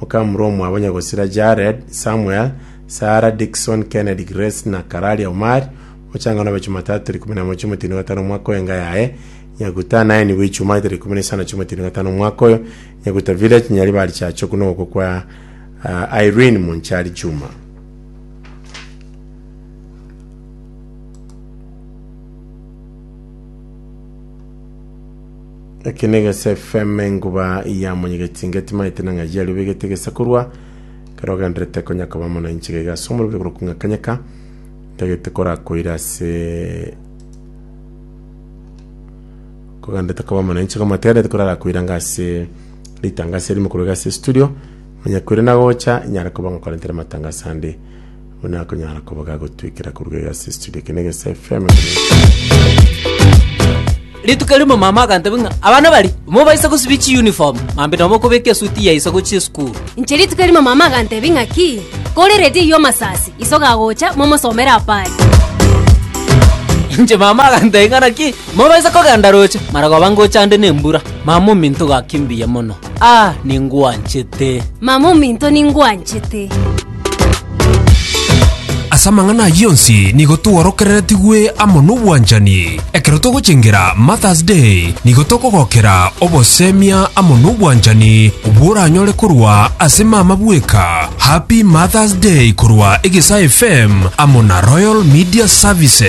Okamura omwabo nyagosira Jared, Samuel, Sarah, Dickson, Kennedy, Grace, na Kararia Omari, mochang'ane obe Chumatatu tarik ikomi na emo chiumweti na gatano omwaka oyo enga yaye, Nyaguta naye nigo Ichumani tarik ikomi na isano chiumweti na gatano omwaka oyo, Nyaguta Village, Nyaribari Church okwo nogokwa kwa ah, Irene Monchari Juma. Eke negesa efm enguba ya monyegeti inga etimaete na ng'ai yario begete egesa korwa ekero ogenderete konya koba mono inche gaiga ase omorobio korwa kung'a kanyeka ntagete korakoira ase kogenderete koba mono inche koma tegerete korarakoira nga ase ritangasa erimo korwa iga ase studio onye koira nagocha inyare koba ng'okorentere matangasa ande Buna akonyara koba gagotwekera koruga egasi estudio eke negesa FM rituko rimo mama akantebi ng'a abana bari mobaisa gosibia chiuniform mambe nomo kobeka esuti yaisa gochia esukuru inche rituko rimo mama akantebi ng'a ki kore redi eywo masasi iso gagocha momosomere apari inche mama akantebi ng'a naki mobaisa kogenda roche mara goba ngocha ande na embura mama ominto gaki mbuya mono ah ningwanchete mama ominto ningwanchete Ase amang'ana ayio onsi nigo tworokereretigwe amo n'obwanchani. Ekero togochengera Martha's Day, nigo tokogokera obosemia amo n'obwanchani bworanyore korwa ase mama bweka. Happy Martha's Day korwa Egesae FM amo na Royal Media Services.